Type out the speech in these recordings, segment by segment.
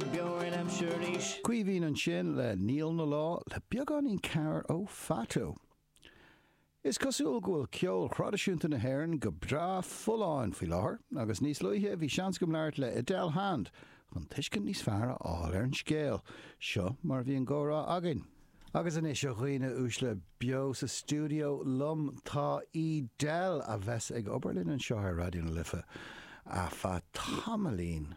Caoimhín ansin le Níl 'na Lá le beagáinín cabhrach ó Fatu. Is cosúil go bhfuil ceol thraidisiúnta na hÉireann go breá folláin faoi láthair agus níos luaithe bhí seans agam labhairt le Edel Hand chun tuiscint níos fearr a fháil ar an scéal. Seo mar a bhí an comhrá againn. Agus anois, a dhaoine uaisle, beo sa stiúideo liom tá Edel, a bheas ag obair linn anseo ar Raidió na Life ar feadh tamaillín.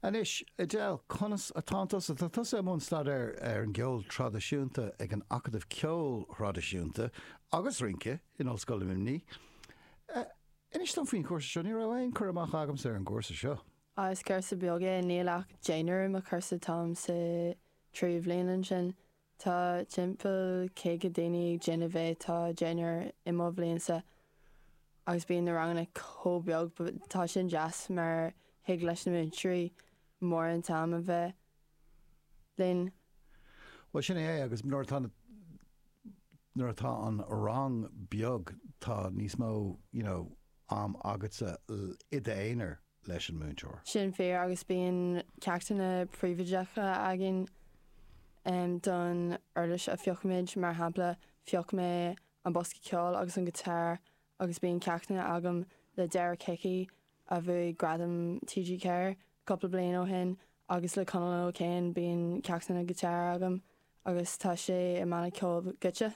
Anois, Edel, conas atánn tusa? Tá tusa i mbun staidéir ar an gceol traidisiúnta ag an Acadamh Ceoil Thraidisiúnta agus Rince in Ollscoil Luimní. Inis dom faoin chúrsa seo, ní raibh aon cur amach agamsa ar an gcúrsa seo. Is cúrsa beag é, níl ach deichniúr ar mo chúrsa, táim sa tríú bliain ansin, tá timpeall caoga daoine ag déanamh é. Tá deichniúr i mo bhliainsa agus bíonn na ranganna chomh beag. Tá sin deas mar thig leis na múinteoirí mórán am a bheith linn. Bhuel, sin é é agus nuair atá na, nuair atá an rang beag, tá níos mó, you know, am agatsa i d'aonar. leis an múinteoir. sin fíor agus bíonn ceachtanna príobháideacha againn don uirlis a phiocfaimid, mar shampla phioc mé an bosca ceoil agus an giotár agus bíonn ceachtanna agam le Derek Hickey a bhuaigh gradam TG4 cúpla bliain ó shin agus le Conal O'Kane bíonn ceachtanna giotár agam agus tá sé i mbanna ceoil Goitse.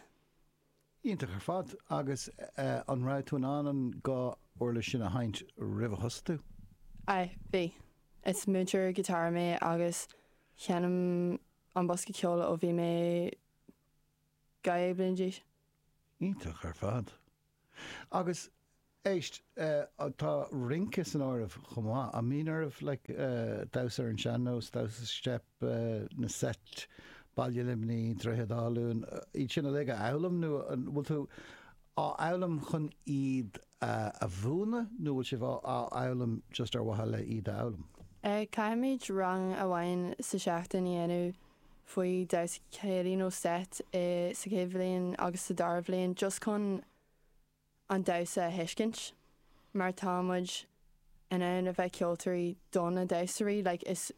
Iontach ar fad. Agus an raibh tú in ann an dhá uirlis sin a sheinnt roimh a thosaigh tú? Aye, bhí. Is múinteoir giotáir mé agus sheinn mé an bosca ceoil ó bhí mé 12 bliain d'aois. Iontach ar fad. Agus Éist, tá rince san áireamh chomh maith. An mbíonn oraibh like damhsa ar an sean-nós, damhsa steip, na seit, Ballaí Luimní, Droichead Átha Luain, iad sin uilig a fhoghlaim nó an bhfuil tú á fhoghlaim chun iad a mhúineadh nó bhfuil sibh á fhoghlaim just ar mhaithe le iad a fhoghlaim? Caithfimid rang amháin sa seachtain a dhéanamh faoi damhsa céilí nó seit sa chéad bhliain agus sa dara bhliain just chun an damhsa a thuiscint mar tá muid in ann a bheith ceoltóirí do na damhsóirí like is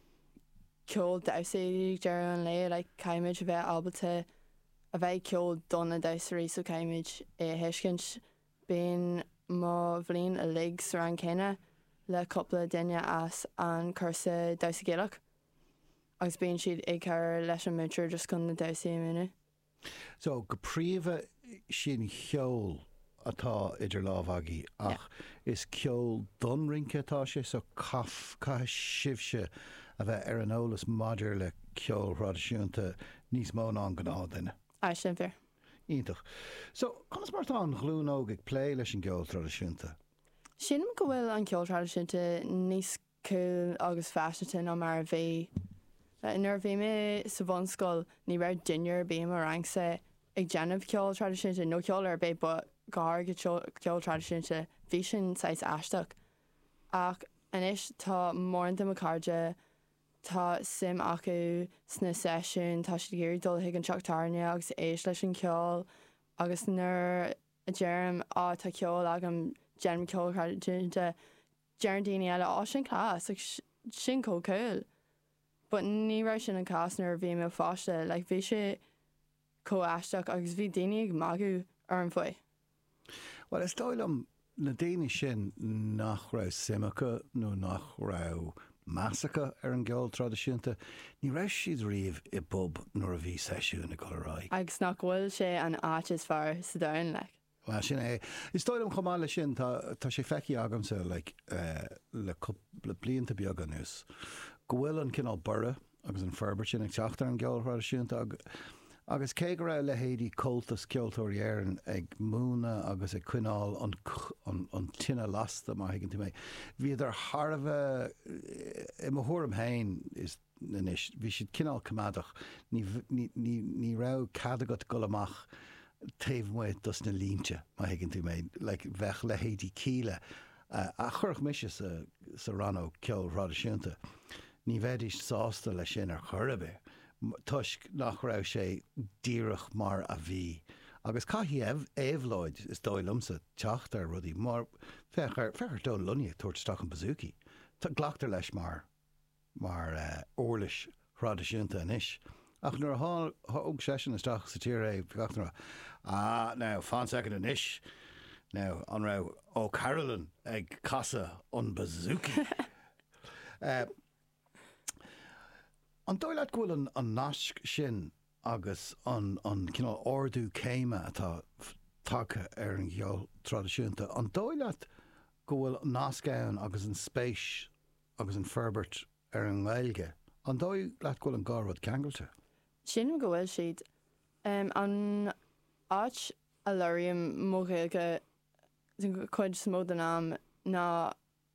ceol damhsa é ag deireadh an lae like caithfimid a bheith ábalta a bheith ag ceol do na damhsóirí so caithfimid é a thuiscint. Bíonn mo bhliain uilig sa rang céanna le cúpla duine as an cúrsa Damhsa Gaelach agus bíonn siad ag cabhair leis an múinteoir just chun na damhsaí a mhúineadh. So, go príomha sin cheol atá idir lámha agaibh ach is ceol don rince atá sé so caithfidh sibhse a bheith ar an eolas maidir le ceol thraidisiúnta níos mó ná an gnáth duine. Aye, sin fíor. Iontach. So, conas mar atá an ghlúin óg ag plé leis an gceol traidisiúnta? Sílim go bhfuil an ceol traidisiúnta níos cool agus faiseanta ná mar a bhí. Nuair a bhí mé sa bhunscoil ní raibh duine ar bith i mo rangsa ag déanamh ceol traidisiúnta nó ceol ar bith but go háirithe ceol traidisiúnta. Bhí sin saghas aisteach. Ach anois tá mórán de mo cairde, tá suim acu sna seisiúin, tá siad ag iarraidh dul chuig an teach tábhairne agus éist leis an cheol agus nuair a deirim, á tá ceol agam, déanaim ceol thraidisiúnta, Deireann daoine eile, Á, sin class, like sin chomh cool. But ní raibh sin an cás nuair a bhí mé i mo pháiste, like bhí sé chomh aisteach agus bhí daoine ag magadh orm faoi. Bhuel, is dóigh liom, na daoine sin nach raibh suim acu nó nach raibh meas acu ar an gceol traidisiúnta, ní raibh siad riamh i bpub nuair a bhí seisiún ag dul ar aghaidh. Agus nach bhfuil sé an áit is fearr sa domhan, like. Bhuel, sin é. Is dóigh liom chomh maith leis sin, tá, tá sé feicthe agamsa le cúpla blianta beaga anuas, go bhfuil an cineál borradh agus an forbairt sin ag teacht ar an gceol thraidisiúnta agus cé go raibh leithéidí Comhaltas Ceoltóirí Éireann ag múineadh agus ag coinneáil an tine lasta, má thuigeann tú mé, bhíodar thar a bheith, i mo thuairim féin, is. anois. Bhí siad cineál coimeádach. Ní raibh cead agat dul amach taobh amuigh dos na línte, má thuigeann tú mé. Like, bheadh leithéidí Kíla, a chuirfinn mise sa rannóg ceoil thraidisiúnta, ní bheidís sásta leis sin ar chor ar bith toisc nach raibh sé díreach mar a bhí. Agus caithfidh éabhlóid, is dóigh liomsa, teacht ar rudaí mar, féach ar Dónal Lunny ag tabhairt isteach an bouzouki. Glactar leis mar. mar uirlis thraidisiúnta anois, ach nuair a thóg seisean isteach sa tír é, bhí gach duine, Ah, now, fan soicind anois, now, an raibh O'Carolan ag casadh an bouzouki? An dóigh leat go bhfuil an nasc sin agus an cineál ardú céime atá tagtha ar an gceol traidisiúnta, an dóigh leat go bhfuil nasc ann agus an spéis, agus an fhorbairt ar an nGaeilge. An dóigh leat go bhfuil an dhá rud ceangailte? Sílim go bhfuil siad. An áit a labhraím mo Ghaeilge den chuid is mó den am ná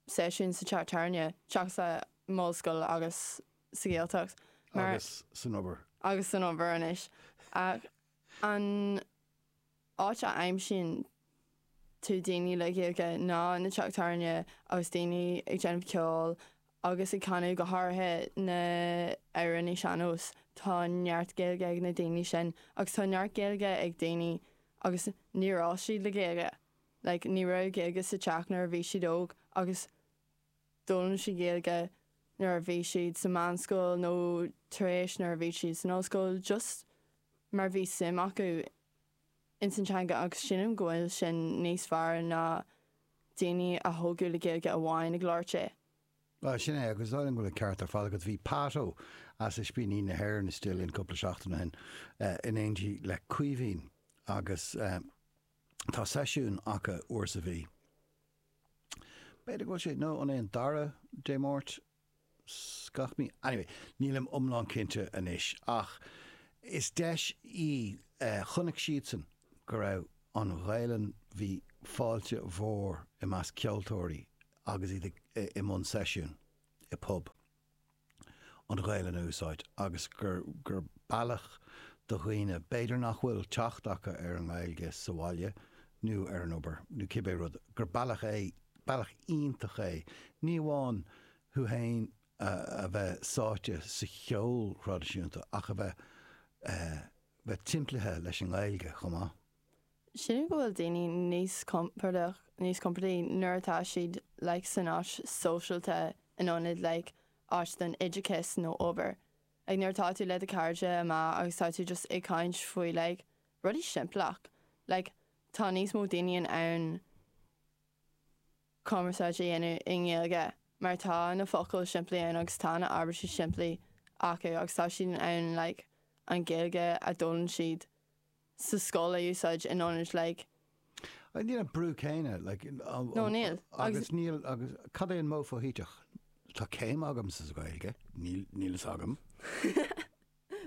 seisiúin sa teach tábhairne, seachas san ollscoil agus sa Ghaeltacht. Agus san obair. Agus san obair anois. Ach an áit a aimsíonn tú daoine le Gaeilge ná na teach tábhairne agus daoine ag déanamh ceoil agus ag canadh, go háirithe na hamhránaithe sean-nós. Tá neart Gaeilge ag na daoine sin agus tá neart Gaeilge ag daoine agus níor fhás siad le Gaeilge. Like, ní raibh Gaeilge sa teach nuair a bhí siad óg agus d'fhoghlaim siad Gaeilge nuair a bhí siad sa meánscoil nó tar éis nuair a bhí siad san ollscoil just mar bhí suim acu i ins an teanga agus sílim go bhfuil sin níos fearr ná daoine a tógadh le Gaeilge amháin ag labhairt é. Bhuel, sin é, agus déarfainn go bhfuil an ceart ar fad agat. Bhí Pádó as Ispíní na hÉireann istigh linn cúpla seachtain ó shin in éindí le Caoimhín agus tá seisiún acu uair sa mhí, b'fhéidir go bhfuil sé, nó an é an dara Dé Máirt? gach mí. Anyway, nílim iomlán cinnte anois ach is deis í. Chonaic siadsan go raibh an Ghaelainn, bhí fáilte mhór i measc ceoltóirí agus iad i mbun seisiún i bpub, an Ghaelainn a úsáid agus gur bealach do dhaoine, b'fhéidir nach bhfuil teacht acu ar an nGaeilge sa bhaile nó ar an obair nó cibé rud, gur bealach é Bealach iontach é, ní amháin thú fhéin a bheith sáite sa cheol thraidisiúnta ach a bheith bheith timplithe leis an nGaeilge chomh maith. Sílim go bhfuil daoine níos compordach, níos compordaí nuair atá siad like san áit sóisialta in ionad like áit don oideachas nó obair. Like nuair atá tú le do cairde amach agus tá tú just ag caint faoi like rudaí simpleach. Like tá níos mó daoine in ann. cumarsáid a dhéanamh i nGaeilge mar tá na focail simplí ann agus tá na abairtí simplí acu agus tá siad in ann like an Gaeilge a d'fhoghlaim siad sa scoil a úsáid in ionad like. Ní hé an brú céanna like an. No níl. Agus níl agus cad é an modh foshuiteach? Tá céim agam sa Ghaeilge, níl a fhios agam.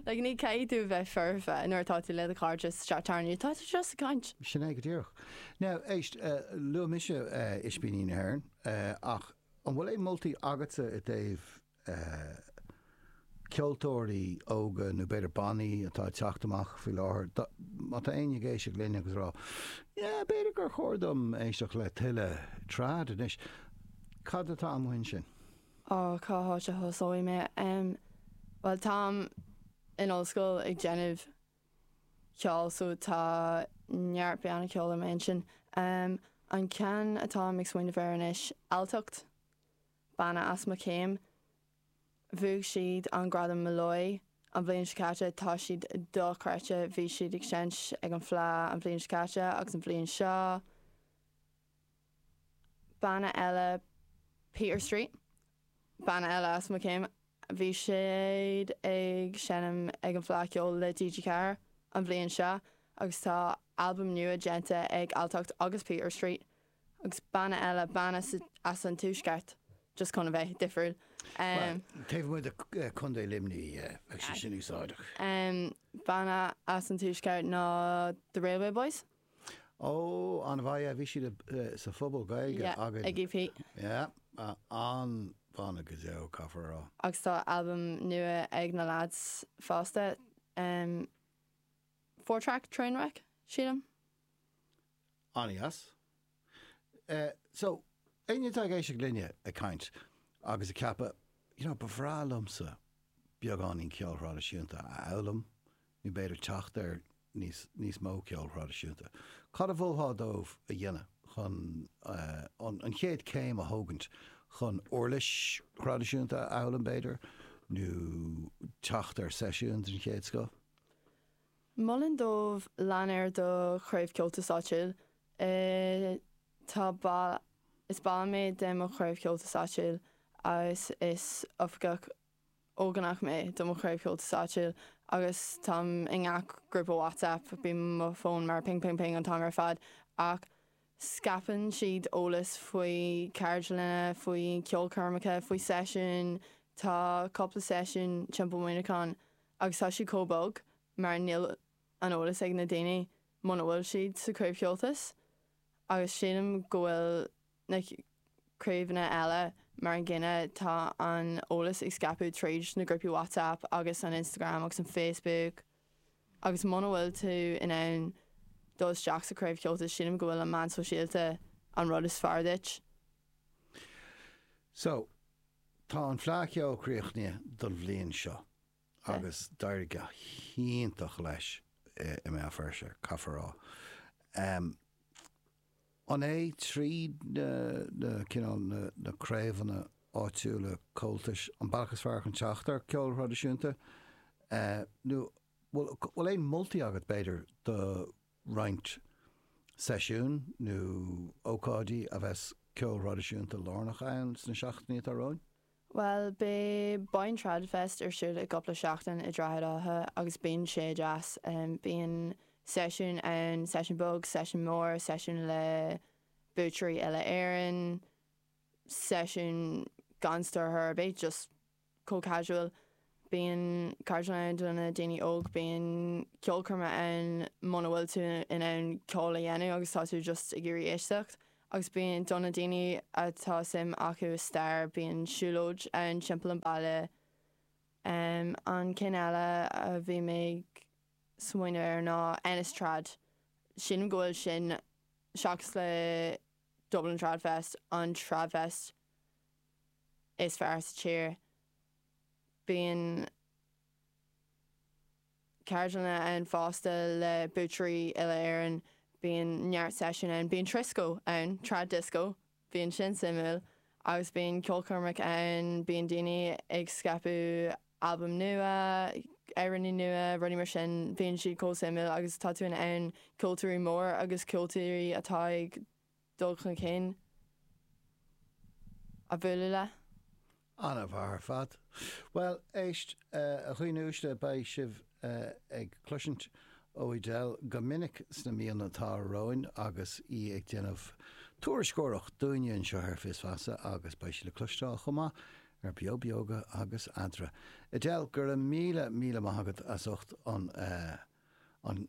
Like, ní chaithfidh tú bheith foirfe nuair atá tú le do chairde sa teach tábhairne, tá tú just ag caint. Sin é go díreach. Now, éist, luaigh mise Ispíní na hÉireann ach an bhfuil aon moltaí agatsa i dtaobh ceoltóirí óga nó b'fhéidir bannaí atá ag teacht amach faoi láthair, má tá éinne ag éisteacht linn agus ag rá, Yeah, b'fhéidir gur chóir dom éisteacht le tuilleadh trad anois, cad atá amuigh ansin? Ó, cá háit a thosóidh mé? Em, bhuel, táim in ollscoil ag déanamh ceoil so tá neart banna ceoil i m'aigne. Em, an ceann atáim ag smaoineamh air anois, Alltacht, banna as mo chéim. Bhuaigh siad an gradam Molloy an bhliain seo caite, tá siad dochreidte, bhí siad ag seinnt ag an Fleadh an bhliain seo caite agus an bhliain seo, banna eile Peter Street, banna eile as mo chéim, bhí siad ag seinm ag an Fleadh Cheoil le DJ Carr an bhliain seo agus tá albam nua déanta ag Alltacht agus Peter Street agus banna eile, banna as an tuaisceart just chun a bheith difriúil. Bhuel, taobh amuigh de Contae Luimní bheadh sé sin úsáideach. Banna as an tuaisceart ná The Railway Boys. Ó, an-mhaith é. Bhí siad sa phobal Gaeilge againn. Yeah, ag EP. Yeah, an-bhanna go deo, caithfear a rá. Agus tá albam nua ag na lads fosta, em, four track, Trainwreck, sílim. An-dheas. So, éinne atá ag éisteacht linne ag caint agus ag ceapadh, you know, ba bhreá liomsa beagáinín ceol thraidisiúnta a fhoghlaim, nó b'fhéidir teacht ar níos, níos mó ceol thraidisiúnta. Cad a mholfá dóibh a dhéanamh chun an, an chéad céim a thógaint chun uirlis thraidisiúnta a fhoghlaim b'fhéidir, nó teacht ar seisiúns den chéad scoth? Mholfainn dóibh lean ar do Chraobh Comhaltas áitiúil. Tá ball, is ball mé de mo Chraobh Comhaltas áitiúil agus is Oifigeach Ógánach mé de mo Chraobh Comhaltas áitiúil agus táim i ngach grúpa WhatsApp, bíonn mo fón mar ping ping ping an t-am ar fad ach scaipeann siad eolas faoi ceardlanna, faoi cheolchoirmeacha, faoi seisiúin, tá cúpla seisiún timpeall Muineachán. Agus tá siad chomh bog mar níl an eolas ag na daoine muna bhfuil siad sa Chraobh Comhaltas agus sílim go bhfuil na craobhanna eile mar an gcéanna, tá an eolas ag scaipeadh tríd na grúpaí WhatsApp agus an Instagram agus an Facebook agus muna bhfuil tú in ann dul isteach sa Craobh Comhaltas sílim go bhfuil an meán sóisialta an rud is fearr duit. So, Tá an Fleadh Cheoil críochnaithe don bhliain seo agus d'éirigh go hiontach leis i mBéal Feirste, caithfear a rá. An é tríd na na cineál na na craobhanna áitiúla Comhaltais an bealach is fearr chun teacht ar ceol thraidisiúnta, nó bhfuil bhfuil aon moltaí agat b'fhéidir do roinnt seisiún nó ócáidí a bheas ceol thraidisiúnta lárnach ann sna seachtainí atá romhainn? Bhuel, beidh Boyne Trad Fest ar siúl i gcúpla seachtain i Droichead Átha agus bíonn sé deas. Bíonn seisiúin ann, seisiún beag, seisiún mór, seisiún le buaiteoirí uile Éireann, seisiún gan stiúrthóir ar bith, just. chomh casual. Bíonn ceardlanna ann do na daoine óg, bíonn ceolchoirme ann muna bhfuil tú in ann ceol a dhéanamh agus tá tú just ag iarraidh éisteacht. Agus bíonn do na daoine atá suim acu i stair, bíonn siúlóid ann timpeall an baile. An ceann eile a bhí mé ag smaoineamh ar ná Ennis Trad. Sílim go bhfuil sin, seachas le Dublin Trad Fest, an Tradfest is fearr sa tír. Bíonn ceardlanna ann fosta le buaiteoirí uile Éireann. Bíonn neart seisiún ann. Bíonn trisco ann, trad disco, bíonn sin suimiúil, agus bíonn ceolchoirmeacha ann, bíonn daoine ag scaipeadh albaim nua, amhránaí nua, rudaí mar sin. Bíonn siad chomh suimiúil agus tá tú in ann ceoltóirí mór agus ceoltóirí atá ag dul chun cinn a bhualadh le. An-mhaith ar fad. Bhuel, éist, a dhaoine uaisle, beidh sibh ag cloisint ó Edel go minic sna míonna atá romhainn agus í ag déanamh tuairisceoireacht dúinne anseo ar Fios Feasa agus beidh sí le cloisteáil chomh maith ar Beo Beoga agus Eadra. Edel, go raibh míle, míle maith agat as ucht an, an.